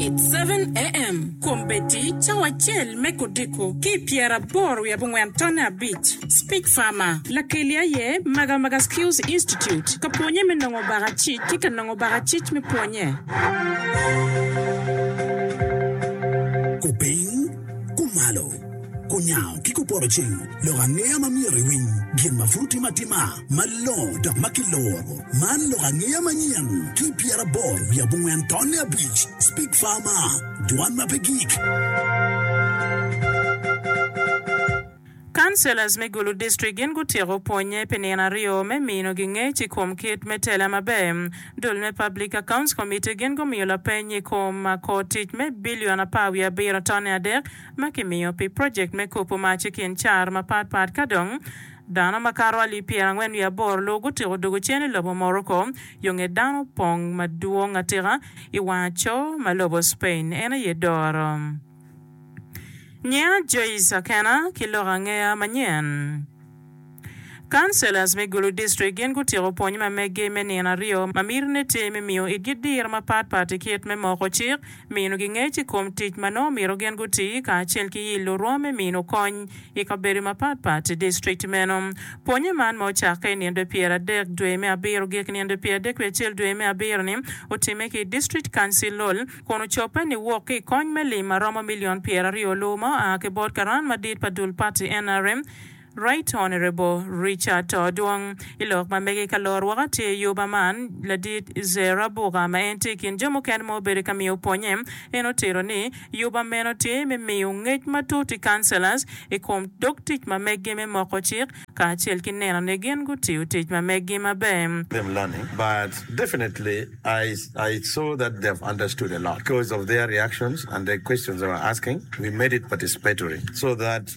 It 7AM, Kom Betty, Cawa acel me kodiko ki i pyeraboro wiye abongwen tonne abic, Speech Farmer, Lakeli aye Magamaga Skills Institute ka pwonye me nongo bakacic ki ka nongo bakacic me pwonye. Kupiny, kumalo. Kunyango ki kupotoceng lok angeya ma myero iwiny gin ma pud timo atima malongo dok ma kiloro. Man lok angeya manyen ki pyeraboro wiye abongwen tonne abic, Speak Farmer, Dwan ma pe gik. Councillors me Gulu District gin gutyeko pwonye pi nino aryo me mino gi ngec i kom kit me tela maber. Dul me Public Accounts Committee gin gumiyo lapeny i kom kor tic me billion apar wiye abiro tonne adek, ma kimiyo pi projekt me kopo mac i kin car mapat pat. Ka dong dano makato alip pyera angwen wiye aboro lu gutiko dugo cen i lobo Morocco, yo nge dano opong madwong atika i wang aco ma lobo Spain en aye doro. Nyinga Joyce Akena ki loko angeya manyen. Councillors me Gulu District gin gutyeko pwony ma meggi me nino aryo ma mitine tye me miyo itgi diro mapat pat i kit me moko cik, minogi ngec i kom tic ma nongo omyero gin guti, kacel ki yillo rwom me mino kony i kabedo mapat pat i district meno. Pwonye man ma ocakke i ninde pyer adek dwe me abiro gik ninde pyer adek wiye acel dwe me abiro ni otime ki i District Councillol kun ocobbe ni wok ki i kony me lim ma romo million pyer aryo lu ma oa ki bot karan madit pa dul party nrm Right Honourable Richard To Dwong I lok ma mege ka lor woko atir I Yuba man, Ladit Zer Abuka ma en tye I kin jo mukene ma obedo ka miyo pwonye, en otito ni, Yuba meno tye me miyo ngec matut I Councillors I kom dog tic ma meggi me moko cik kacel ki neno ni gin gutiyo tic ma meggi maber. them learning but definitely I I saw that they have understood a lot because of their reactions and the questions they were asking we made it participatory so that.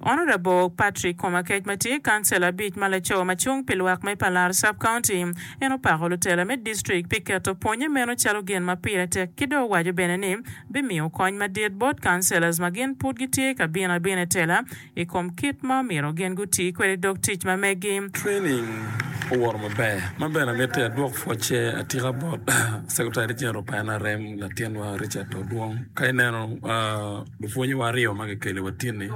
Honourable Patrick Komakec ma tye kancela abic ma laco ma cung pi lwak me Palar Sub County, en opako lutela me district pi keto pwonye meno calo gin ma pire tek ki dong owaco bene ni bimiyo kony madit bot councillors ma gin pud gitye ka bino abina i tela i kom kit ma omyero gin guti kwede dog tic ma megi. Training owoto maber ma bene amitti adwok pwocce atika bot Secretary General pa NRM latinwa Richard Odwong ka ineno Lupwonyewa aryo ma kikelo i watini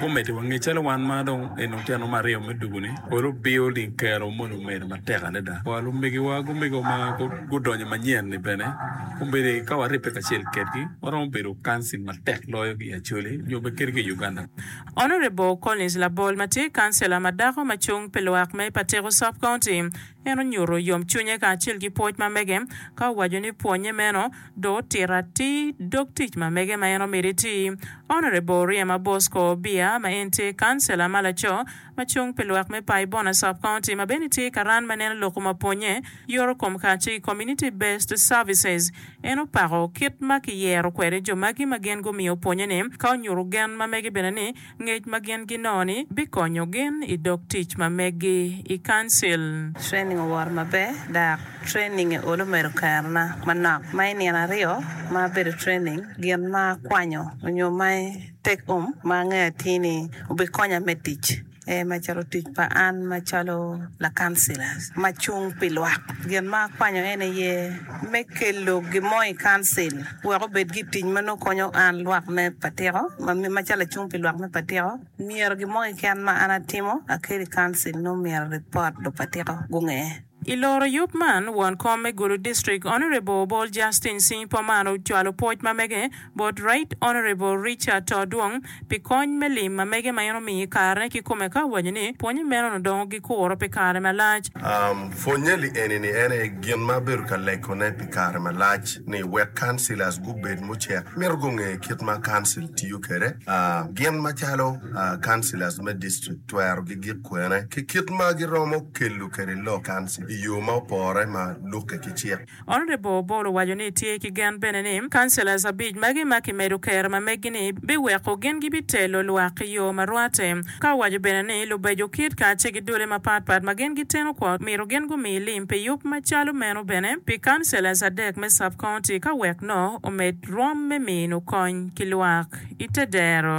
gumiti wa nge calo wan ma dong en oteno me aryo me dugu-ni pol obiyo ling kero mono omedo matek adada. Wa lumegiwa gumego ma gudonyo manyen-ni bene omyero ka waribbe kacel kedgi waromo bedo kansil matek loyo ki i Acholi nyo bene kadi ki i Uganda. Honourable Collins Labol ma tye kancila ma dako ma cung pi lwak me Pateko Sub County en onyuto yomcwinye kacel ki pwoc ma mege ka owaco ni pwonye meno dong otito atir dog tic ma mege ma en omito iti. Honourable Riema Bosco Obia ma en tye Kancela ma laco ma cung pi lwak me Pai Bona Sub County ma bene tye ka ran ma neno lok ma pwonye yoro kom kace ki Community Based Services en opako kit ma ki yero kwede jo magi ma gin gumiyo pwonye ni ka onyutu gen ma mege bene ni Ngec ma gin ginongo-ni bikonyo gin i dog tic ma meggi i Kancil. Training owoto maber dak training-nge olo medo kerona manok ma i nino aryo ma abedo training gin ma akwanyo onyo ma i take home ma angeyo atir ni obikonya me tic ee macalo tic pa an macalo lakancilas ma cung pi lwak gin ma akwanyo en aye me kelo gin mo i Kancil wek obed ki tic ma nongo konyo an lwak me Patiko, macalo acung pi lwak me Patiko, myero gin mo keken ma an atimo akelo i Kancil nongo myero ripot Lupatiko gunge. I loro yub man, won kom me Gulu District, Honourable Obol Justin Cing Pomar ocwalo pwoc ma mege, bot Right Honourable Richard Todwong pi kony me lim ma mege ma en omiyo i kare-ne kikome ka owaco ni pwonye meno-nu dongo gikuro pi kare malac. Pwonye li eni-ni en aye gin ma abedo ka legone pi kare malac ni wek councillors gubed mucek mito gunge kit ma council tiyo kwede gin macalo councillors me district twero gigik kwene ki kit ma giromo kelo kwede lok council i yo ma opore ma lukke ki cik. Honourable Obol owaco ni tye ki gen bene ni Councillors abic magi ma kimedo kero ma meggi ni biweko gin gibitelo lwak ki yo ma rwate ka owaco bene ni lubeco kit ka ce ki dule ma pat pat ma gin giteno kwo mito gin gumi lim pi yub ma calo meno bene pi Councillors adek me Sub County ka wek no omed rwom me mino kony ki lwak ite dero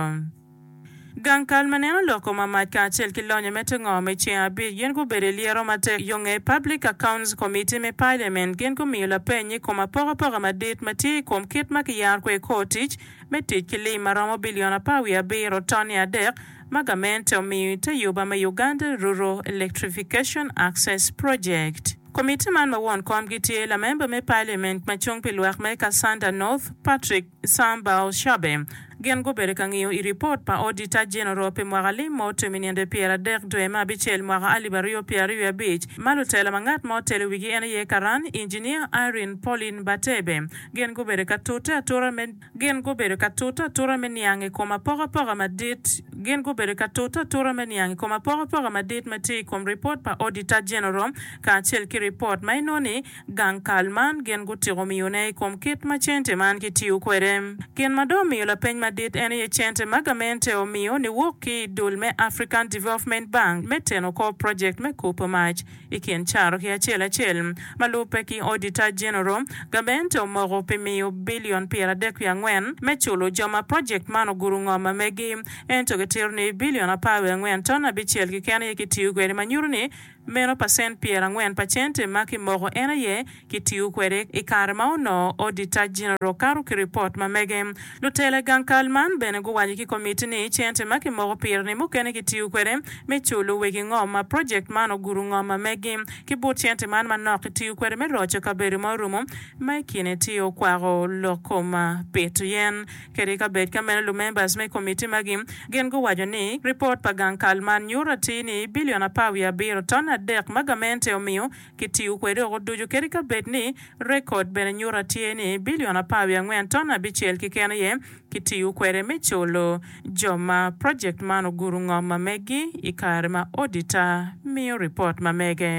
Gang kal ma neno loko mamac kacel ki lonyo me tengo me ceng abic gin gubedo i lyero matek yo nge Public Accounts Committee me Paliament gin gumiyo lapeny i kom apokapoka madit ma tye i kom kit ma kiyaro kwede kor tic me tic ki lim ma romo bilion apar wiye abiro tonni adek ma gamente omiyo i te yuba me Uganda Rural Electrification Access Project. Komitti man ma won komgi tye lamemba me Paliament ma cung pi lwak me Kassanda North, Patrick. Sam Bal-Shabe. Gin gubedo ka ngiyo i ripot pa Odita Jeneral pi mwaka alim ma otum i nino pyer adek dwe me abicel mwaka alip aryo pyer aryo abic, ma lutela ma ngat ma otelo wigi en aye karan Injiniya Irene Pauline Batebe. Gin gubedo ka tute atura me Gin gubedo ka tute atura me niang i kom apokapoka madit Gin gubedo ka tute atura me niang i kom apokapoka madit ma tye i kom ripot pa Odita Jeneral kacel ki ripot ma inoni Gang kal man gin gutyeko miyone i kom kit ma cente man kitiyo kwede. Gin ma dong omiyo lapeny madit en aye cente ma gamente omiyo niwok ki i dul me African Development Bank me teno kor project me kupu mac i kin caro ki acel acel. Ma lubbe ki Auditor General, gamente omoko pi miyo billion pyeradek wiye angwen me culo jo ma project man oguru ngom ma megi. Ento kitito ni billion apar wiye angwen ton abicel keken aye kitiyo kwede ma nyuto ni Meno pa cent pyerangwen pa cente ma ki moko en aye ki tiyo kwede i kare ma onoo Auditor General kato ki report ma mege. Lutela i gang kal man bene guwaco ki komiti ni cente ma ki moko pire ni mukene ki tiyo kwede me culo wegi ngom ma project man ogudo ngom ma megi ki but cente man manok ki tiyo kwede me roco kabedo ma orumo ma i kine tye okwako lok kom pito yen Kadi ka bed ka meno lumembers me komitti magi gin guwaco ni ripot pa gang kal man nyuto atir ni bilion apar wiye abiro ton adek ma gamente omiyo ki tiyo kwede oko ducu kadi ka bed ni rekod bene nyuto atir ni bilion apar wiye angwen ton abicel keken aye ki tiyo kwede me culo jo ma project man ogudo ngom ma megi i kare ma auditor miyo ripot ma mege.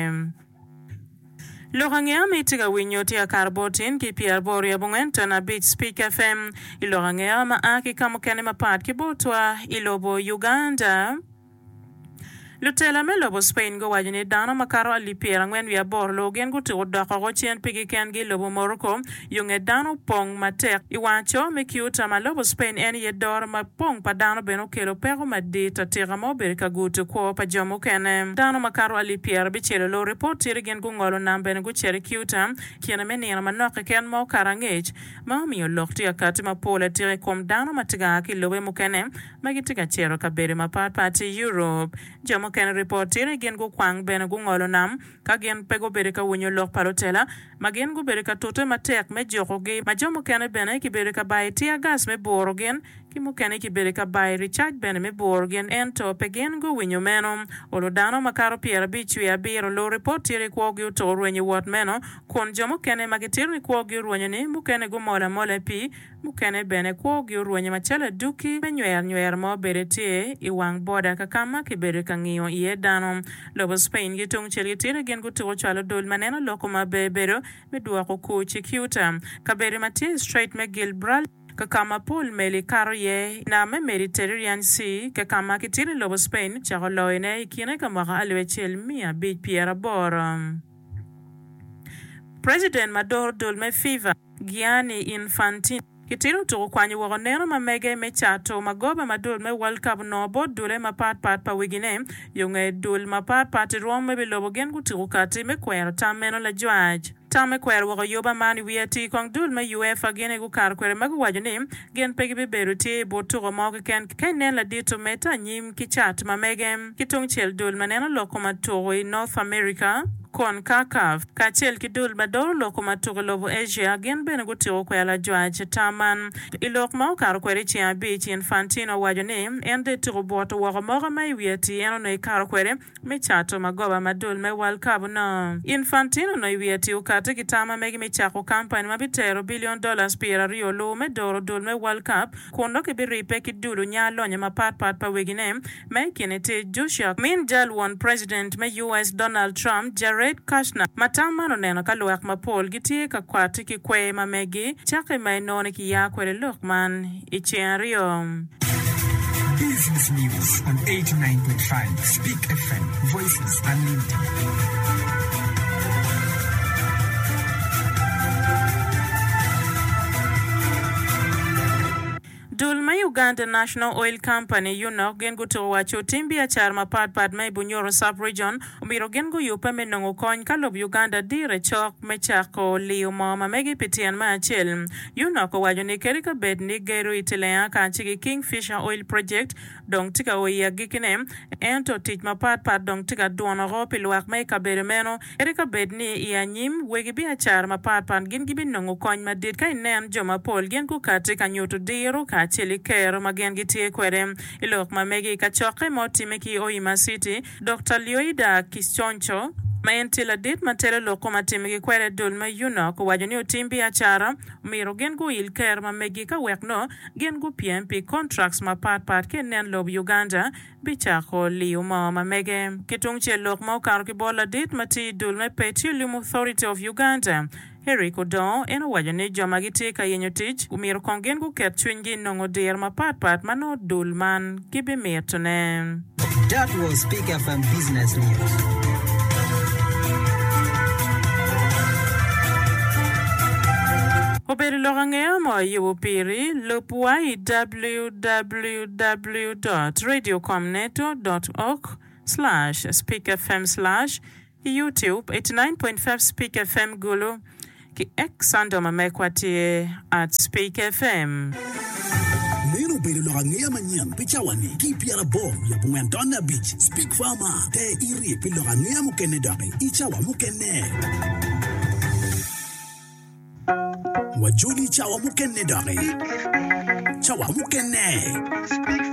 Lok ange ama itye ka winyo tye akato bot tin ki pyer aboro ryo abongwen ton abic Speak FM i lok ange ama a ki kamukene mapat ki botwa i lobo Uganda. Lutela me lobo Spain guwaco ni dano makato alip pyer angwen wiye aboro loo gin gutuko dok oko cen pigi kengi i lobo Morocco, Yo nge dano opong matek. I wang aco me Ceuta ma lobo Spain en aye doro mapong pa dano bene okelo peko madit atika ma obedo ka guto kwo pa jo mukene. Dano makato alip pyera abicel olor i port city gin gungolo nam bene gucito i Ceuta kine me nino manok keken ma okato angec ma omiyo lok tye ka kati mapol atika i kom dano ma tye ka a ki lobe mukene ma gitye ka cito kabedo mapat pat i Europe. Jo mukene ri port city gin gukwang bene gungolo nam ka gin pe gubedo ka winyo lok pa lutela ma gin gubedo ka tute matek me jukogi, ma jo mukene bene kibedo ka bayo tiya gas me bworo gin, ki mukene kibedo ka bayo ricac bene me bworo gin, ento pe gin guwinyo meno. Olo dano makato pyerabic cwee abiro, luripot tito i kwogi oto orwenyo wot meno, kun jo mukene ma gitito i kwogi orwenyo ni mukene gumol amola pi. Mukene bene kwogi orwenyo macalo aduki me nywernywer ma obede tye i wang boda kakama kibedo ka ngiyo iye dano. Lobo Spain ki tungcel ki tira gin gutuko cwalo dul ma neno loko ma bebedo me dwoko kur ci Ceuta, kabedo ma tye i Strait me Gilbraltar, kakama pol meli kato iye i nam me Mediterranean Sea, kakama ki tira lobo Spain ocako loyo ne i kine ka mwaka alip acel miya abic pyera aboro. President ma doro dul me FIFA. Gianni Infantino, ki tilo tuku kwanyo woko neno ma mege me cato magoba ma dul me World Cup onongo bot dule mapat pat pa wigine. Yo nge dul mapat pat i rwom me bilobo gin gutuku kati me kwero tam meno lajwac. Tam me kwero woko yoba man i wi atii kong dul me UEFA gin aye gukato kwede ma guwaco ni Gin pe gibibedo tye i but tuko mo keken ka inen ladit omedde anyim ki cat ma mege ki tungcel dul ma neno loko ma tuko i North America, Concacaf, kacel ki dul ma doro loko ma tuko i lobo Asia gin bene gutiko kwela ajwac ata man. I lok ma okato kwede i ceng abic, Infantino owaco ni en dong etuko bwot-to woko moka ma i wi ati en onongo ekato kwede. me cato magoba madul me World Cup onongo. Infantino onongo i wi atir okatte ki tam ma mege me cako kampani ma bitero bilion dollars pyeraryo luwu me doro dul me World Cup kun dok kibiribbe ki dulu nya lonyo mapat pat pa wegine ma i kine tye Joshua Min jal won President me US Donald Trump Jared Kushner ma tam man oneno ka luwak mapol gitye ka kwati ki kwer ma megi cake ma enoni kiya kwede lok man i ceng aryo. Dul me Uganda National Oil Company, UNOC, gin gutuko wa cutim biacara mapatpat me i Bunyoro Sub-Region omyero gin guyubbe me nongo kony ka lobo Uganda dire cok me cako liyo moo ma megi pi tyen me acel. Yunok owaco ni kadi ka bed ni gedo i Tilea kace ki King Fisher Oil Project dong tye ka o i agikine, ento tic mapat pat dong tye ka dwono oko pi lwak me i kabedo meno. Kadi ka bed ni i anyim wegi biacara mapat pat gin gibi nongo kony madit ka inen jo mapol gin gukati ka nyutu diro kacel ki kero ma gin gitye kwede i lok ma megi. Kacokke ma otime ki Oima City, Dokta Lioida Kiconco, ma en tye ladit ma telo lok koma timo ki kwede adol ma UNOC, owaco ni otim biacara omyero gin guil ker ma megi ka wek nongo gin gupyem pi contracts mapat pat ki nen lob Uganda bicako liyo mo ma mege. Ki tungcel lok ma okato ki bot ladit ma tye i dul me Petroleum Authority of Uganda, Eric odongo en owaco ni jo ma gitye ka yenyo tic omyero kong gin guket cwinygi i nongo diro mapat pat ma nongo dul man gibimitone. That was Peak FM Business News. Obedo lok angeya ma wayubo piri. Lub wa i www dot radiocomneto dot org slash speakfm slash. Youtube, 89.5 Speak FM Gulu, ki X Sando ma mekwa tye at Speak FM. Meno obedo lok angeya manyen pi cawa-ni ki i pyerabor wiye abongwen tonne abic. Speak Farmer, te iri pi lok angeya mukene doki i cawa mukene. Wajoli i cawa mukene doki. Cawa mukene.